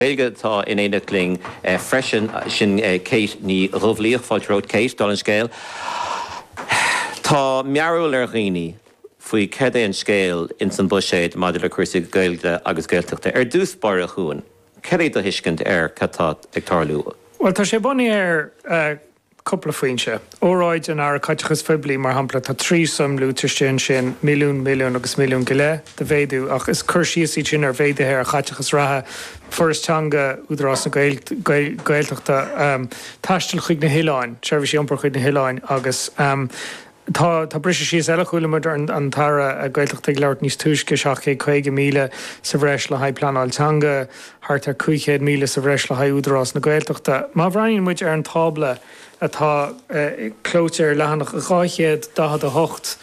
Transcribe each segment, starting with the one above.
Gaeilge atá in éineacht linn freisin, sin Kate Ní Dhubhlaoich. Fáilte romhat, Kate. Dála an scéil, tá mearbhall ar dhaoine faoi céard é an scéal ins an bhuiséad maidir le cúrsaí Gaeilge agus Gaeltachta. Ar dtús báire chugainn, céard é do thuiscint ar cad tá ag tarlú? Bhuel, tá sé bunaithe ar cúpla foinse. Óráid an Aire Caiteachais Phoiblí, mar shampla, tá trí suim luaite istigh ansin, milliún, milliún agus milliún go leith de mhéadú, ach is cur síos iad sin ar mhéaduithe ar chaiteachas reatha, Foras Teanga, Údarás na Gaeltachta, taisteal chuig na hoileáin, seirbhísí iompair chuig na hoileáin agus. Tá briseadh síos eile, chuala muid an tAire Gaeltachta ag labhairt níos túisce, 750,000 sa bhreis le haghaidh pleanáil teanga, thart ar 500,000 sa bhreis le haghaidh Údarás na Gaeltachta. Má bhreathnaíonn muid ar an tábla atá clóite ar leathanach 248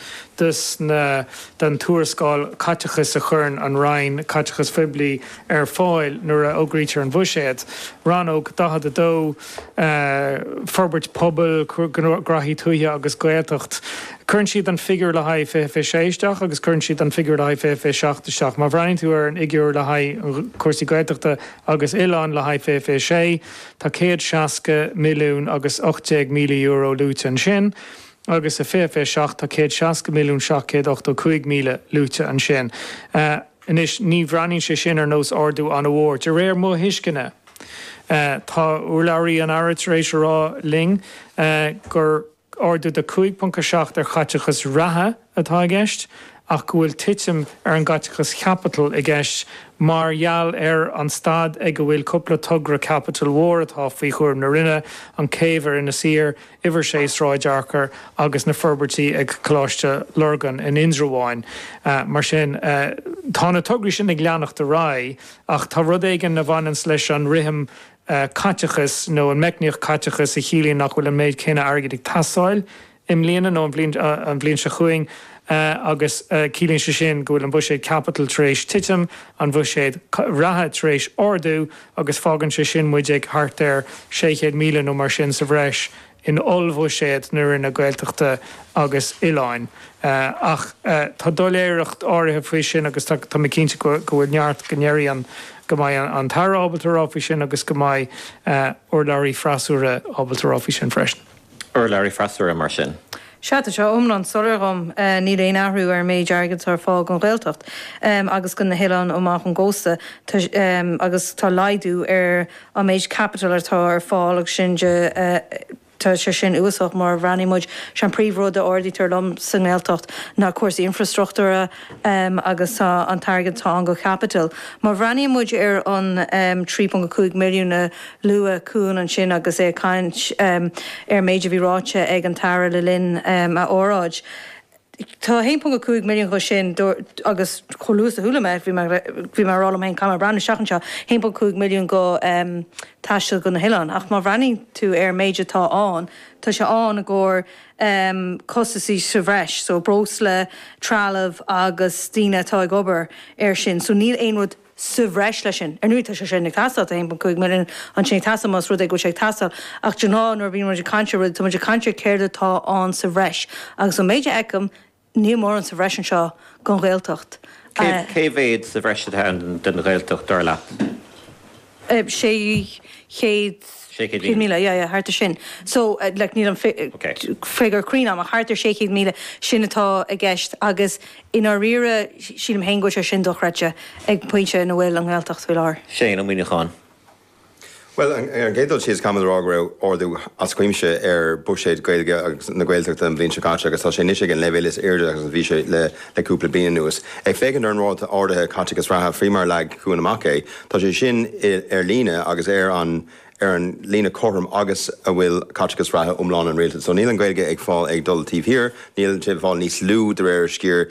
den tuarascáil caiteachais a chuireann an Roinn Caiteachais Phoiblí ar fáil nuair a fhógraítear an Bhuiséad, Rannóg 42, forbairt pobail, gnóthaí tuaithe agus Gaeltacht. Cuireann siad an figiúr le haghaidh 2026 isteach agus cuireann siad an figiúr le haghaidh 2027 isteach. Má bhreathnaíonn tú ar an fhigiúr le haghaidh cúrsaí Gaeltachta agus oileáin le haghaidh 2026, tá céad seasca milliún agus ocht déag míle euro luaite ansin, agus i 2027 tá céad seasca milliún seacht céad ochtó cúig míle luaite ansin. Anois, ní bhreathnaíonn sé sin ar nós ardú an-mhór, de réir mo thuisceana. Tá urlabhraí an Aire tar éis a rá linn gur ardú de 5.7 ar chaiteachas reatha atá i gceist ach go bhfuil titim ar an gcaiteachas chaipitil i gceist mar gheall ar an staid ag a bhfuil cúpla togra caipitil mhór atá faoi chúram na Roinne, an chéibh ar Inis Oírr Uimhir 6 Sráid Fhearchair agus na forbairtí ag Coláiste Lurgan in Indreabhán. Mar sin, tá na tograí sin ag leanacht ar aghaidh ach tá rud éigin a bhaineanns leis an rithim caiteachais nó an meicníocht caiteachais a chiallaíonn nach bhfuil an méid céanna airgid ag teastáil i mbliana nó an bhliain seo chugainn agus ciallaíonn sé sin go bhfuil an buiséad caipitil tar éis titim, an bhuiséad reatha tar éis ardú. agus fágann sé sin muid ag thart ar 600,000 nó mar sin sa bhreis in ollbhuiséad na Roinne Gaeltachta agus Oileáin. Ach tá doiléireacht áirithe faoi sin agus tá mé cinnte go bhfuil neart go ndéarfaidh go mbeidh an tAire ábalta rá faoi sin agus go mbeidh urlabhraí freasúra ábalta rá faoi sin freisin. urlabhraí freasúra mar sin. Sea, tá sé iomlán soiléir dhom. Níl aon athrú ar an méid airgid atá ar fáil don Ghaeltacht agus do na hoileáin amach ón gcósta agus tá laghdú ar an méid caipitil atá ar fáil agus sin de, tá sé sin uafásach má bhreathnaíonn muid, sé an príomh rud a ardaítear liom sa nGaeltacht ná cúrsaí infrastruchtúra, um, agus tá an t-airgead atá ann do caipiteal. Má bhreathnaíonn muid ar an um, 3.5 milliún a luaigh Cuan ansin agus é ag caint um, ar an méid a bhí ráite ag an tAire le linn um, a óráide, tá 1.5 milliún dho sin, agus chomh luath is a chuala mé, bhí mé, bhí mé a rá liom féin, caithfidh mé breathnú isteach anseo, 1.5 milliún go um, taisteal go na hoileáin. Ach má bhreathnaíonn tú ar an méid atá ann, tá sé ann i gcomhair um costasaí sa bhreis. So breosla, trealamh agus daoine atá ag obair air sin. So níl aon rud sa bhreis leis sin. Ar ndóigh tá sé sin ag teastáil, tá 1.5 milliún ansin ag teastáil más rud é go bhfuil sé ag teastáil. Ach de ghnáth nuair a bhíonn muid ag caint ar rud, tá muid ag caint ar céard atá ann sa bhreis. Agus an méid a fheicim, Níl mórán sa bhreis anseo don Ghaeltacht. Cé mhéad sa bhreis atá ann don Ghaeltacht, dar leat? Sé chéad míle, yeah, yeah, thart ar sin. So, like, níl an figiúr cruinn agam ach thart ar sé chéad míle, sin atá i gceist agus i ndáiríre sílim féin go bhfuil sé sin dochreidte ag an bpointe ina bhfuil an Ghaeltacht faoi láthair. Séadna Muíneacháin. Bhuel, ar an gcéad dul síos, caithfimid a rá go raibh ardú as cuimse ar bhuiséad Gaeilge is na Gaeltachta an bhliain seo caite agus tá sé anois ag an leibhéal is airde agus a bhí sé le cúpla bliain anuas. Ag féachaint ar an ráta ardaithe caiteachais reatha, faoi mar a leag Cuan amach é, tá sé sin ar líne agus ar an ar an líne chothrom agus a bhfuil caiteachas reatha iomlán an Rialtais. So níl an Ghaeilge ag fáil ag dul taobh thiar, níl sé ag fáil níos lú de réir a sciar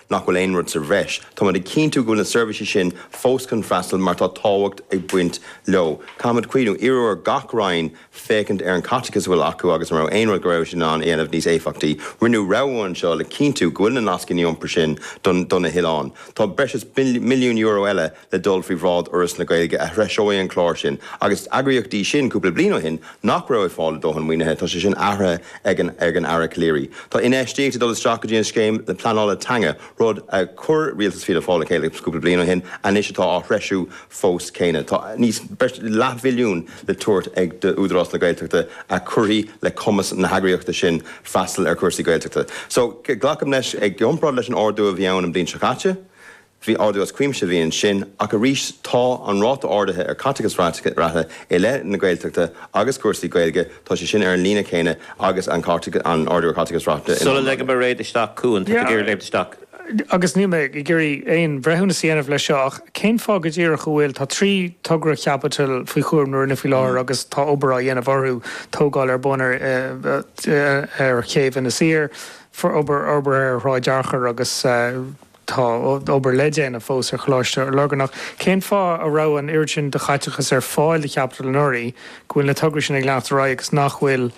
nach bhfuil aon rud sa bhreis. Táimid ag cinntiú go bhfuil na seirbhísí sin fós chun freastal mar tá tábhacht ag baint leo. Caithfimid cuimhniú, iarradh ar gach Roinn féachaint ar an gcaiteachas a bhfuil acu agus an raibh aon rud go raibh siad in ann a dhéanamh níos éifeachtaí. Rinneadh rogha anseo le cinntiú go bhfuil na nascanna iompair sin do na hoileáin. Tá breis is milliún euro eile le dul faoi bhráid Fhoras na Gaeilge a threiseoidh an clár sin agus is eagraíocht í sin, cúpla bliain ó shin, nach raibh ag fáil a dóthain maoinithe, tá sé sin athraithe ag an Aire Calleary. Tá infheistíocht ag dul isteach go dtí an scéim pleanála teanga, rud a chuir rialtas Fhianna Fáil le chéile cúpla bliain ó shin, anois atá á threisiú fós céanna. Tá níos, breis is leathmhilliún le tabhairt ag d'Údarás na Gaeltachta a chuirfidh le cumas na heagraíochta sin freastal ar chúrsaí Gaeltachta. So, glacaim leis, i gcomparáid leis an ardú a bhí ann an bhliain seo caite, Bhí ardú as cuimse a bhí ansin, ach arís tá an ráta ardaithe ar chaiteachas reatha i leith na Gaeltachta agus cúrsaí Gaeilge, tá sé sin ar an líne chéanna agus an ardú ar chaiteachas reatha in Sula ligim Mairéad isteach, a Chuain, tá tú ag iarraidh léimt isteach. agus níl mé ag iarraidh aon bhreithiúnas a dhéanamh leis seo, ach cén fáth go díreach a bhfuil, tá trí togra chaipitil faoi chúram na Roinne faoi láthair agus tá obair á dhéanamh orthu, tógáil ar bun ar chéibh Inis Oírr, obair fhorbartha ar Shráid Fhearchair agus. Tá obair le déanamh fós ar Choláiste Lurgan ach. Cén fáth a raibh an oiread sin de chaiteachas ar fáil do chaipiteal anuraidh, go bhfuil na tograí sin ag leanacht ar aghaidh agus nach bhfuil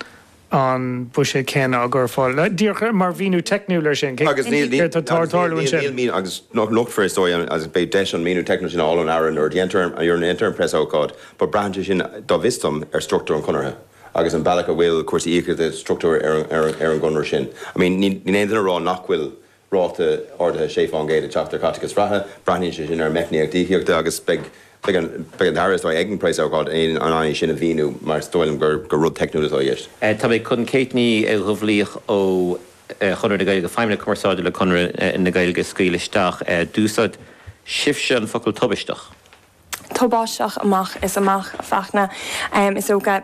an buiséad céanna á chur ar fáil? Díreach mar mhíniú teicniúil air sin, céard atá ag tarlú ansin? Níl, agus nochtfar is dóigh agus beidh deis an míniú teicniúil sin a fháil ón Aire nuair a dhéantar an preasócáid. Braitheann sé sin, go bhfios dom, ar struchtúr an Chonartha agus an bealach a bhfuil cúrsaí íocaíochta socraithe ar an gConradh sin. Níl aon duine ag rá nach bhfuil ráta ardaithe 6 fán gcéad ag teacht ar chaiteachas reatha. Braitheann sé sin ar an meicníocht íocaíochta agus beidh an tAire, is dóigh, ag an bpreasócáid in ann é sin a mhíniú mar is dóigh liom gur rud teicniúil atá i gceist. Tá mé ag dul chuig Kate Nic Dhubhlaoich ó Chonradh na Gaeilge, Feidhmeannach Cumarsáide le Conradh na Gaeilge, scaoil isteach. D'úsáid sibhse an focal tubaisteach. tubaisteach amach is amach, a Fhachtna. Is dócha,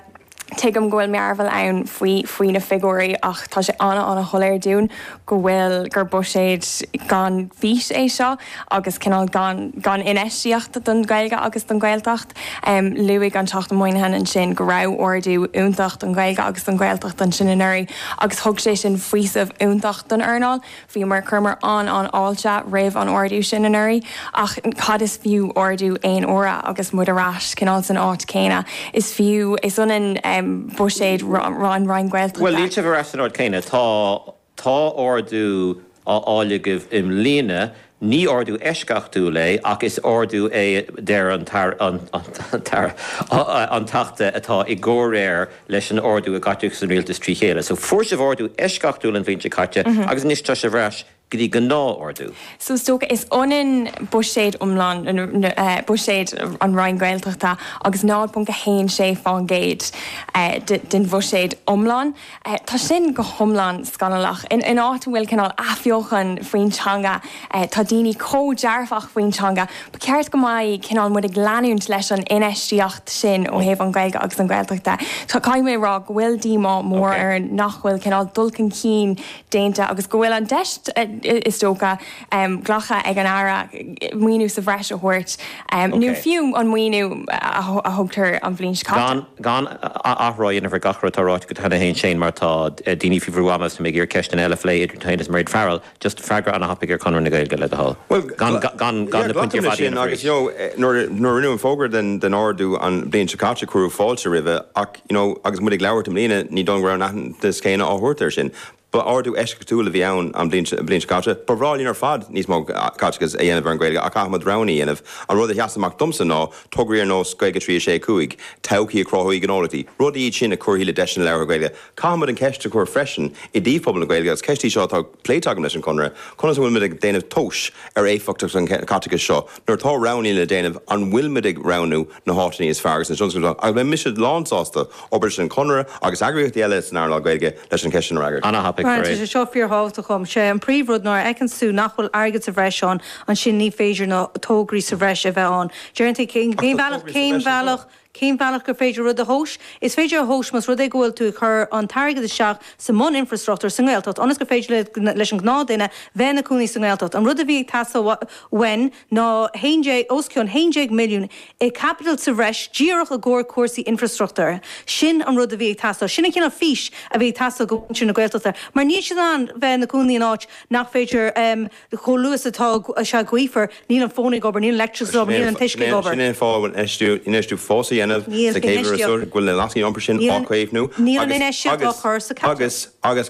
tuigim go bhfuil mearbhall ann faoi na figiúirí ach tá sé an-an-shoiléir dúinn go bhfuil, gur buiséad gan fhís é seo agus cineál gan infheistíocht don Ghaeilge agus don Ghaeltacht. Luaigh an Teachta Moynihan ansin go raibh ardú iontach don Ghaeilge agus don Ghaeltacht ansin anuraidh agus thug sé sin faoiseamh iontach don earnáil. Bhíomar, chuireamar an-fháilte roimh an ardú sin anuraidh ach cad is fiú ardú aon uaire agus muid ar ais cineál san áit chéanna. Is fiú, is ionann buiséad an Roinn Ghaeltachta. Bhuel, níl sibh ar ais san áit chéanna. Tá, tá ardú á fháil agaibh i mbliana, ní ardú eisceachtúil é ach is ardú é a deir an tAire, an tAire, an Teachta atá i gcomhréir leis an ardú i gcaiteachas an Rialtas trí chéile. So fuair sibh ardú eisceachtúil an bhliain seo caite agus anois tá sibh ar ais go dtí gnáthardú. So is dócha, is ionann buiséad iomlán buiséad an Roinn Gaeltachta agus 0.16% den bhuiséad iomlán. Tá sin go hiomlán scannalach. In áit a bhfuil cineál athbheochan faoin teanga, tá daoine chomh dearfach faoin teanga ba cheart go mbeadh cineál muid ag leanúint leis an infheistíocht sin ó thaobh an Ghaeilge agus an Ghaeltacht de. Caithfidh mé a rá go bhfuil díomá mór orainn nach bhfuil cineál dul chun cinn déanta agus go bhfuil an deis is dócha glactha ag an Aire maoiniú sa bhreis a thabhairt nó fiú an maoiniú a tugadh an bhliain seo caite. Gan athrá a dhéanamh ar gach rud atá ráite go dtí seo a Naoise mar tá daoine faoi bhrú ama agus tá mé ag iarraidh ceisteanna eile a phlé idir tú féin agus Mairéad Farrell. just freagra ana thapaidh ar Chonradh na Gaeilge le do thoil gan gan gan na pointí ar fad a dhéanamh arís. agus you know nuair nuair a rinneadh an fógra den den ardú an bliain seo caite cuireadh fáilte roimhe ach you know agus muid ag labhairt i mbliana ní dóigh go raibh an t-aitheantas céanna á thabhairt ar sin ba ardú eisceachtúil a bhí ann an bliain an bliain seo caite ba bhreá linn ar fad níos mó caiteachas a dhéanamh ar an Gaeilge ach caithfimid roghanna a dhéanamh an rud a sheas amach domsa ná tograí ar nós Gaeilge trí a sé a cúig todhchaí a chruthóidh gnólachtaí rudaí iad sin a chuirfidh le deiseanna labhartha Gaeilge Caithfimid an cheist a chur freisin i dtaobh phobal na Gaeilge, agus ceist í seo atá pléite agam leis an gConradh, conas a bhfuil muid ag déanamh tomhais ar éifeachtacht an chaiteachais seo nuair atá roghanna le déanamh, an bhfuil muid ag roghnú na háiteannaí is fearr agus na tionscadail is fearr, agus beidh mise lán sásta obair leis an Chonradh agus eagraíochtaí eile san earnáil Gaeilge leis an cheist sin a fhreagairt. Mar tá sé seo fíor thábhachtach dhom. Sé an príomh rud nuair a fheiceanns tú nach bhfuil airgead sa bhreis ann, ansin ní féidir na tógraí sa bhreis a bheith ann. Deireann tú cén bealach, cén bealach, Cén bealach gur féidir rud a thomhas? Is féidir a thomhas más rud é go bhfuil tú ag cur an t-airgead isteach sa mbun-infreastruchtúr sa nGaeltacht ionas gur féidir leis an gnáthduine bheith ina cónaí sa nGaeltacht. An rud a bhí ag teastáil uainn ná 11, os cionn 11 milliún i gcaipiteal sa bhreis díreach i gcomhair cúrsaí infreastruchtúir. Sin an rud a bhí ag teastáil. Sin an cineál fís a bhí ag teastáil do mhuintir na Gaeltachta mar níl siad in ann bheith ina gcónaí in áit nach féidir chomh luath is atá sé gaofar, níl an fón ag obair, níl an leictreachas ag obair, níl an t-uisce ag obair. Sin é an fáth a bhfuil infheistiú fós á dhéanamh sa chéad uireasúr, go bhfuil na nascanna iompair sin á gcaomhnú agus, agus, agus, agus,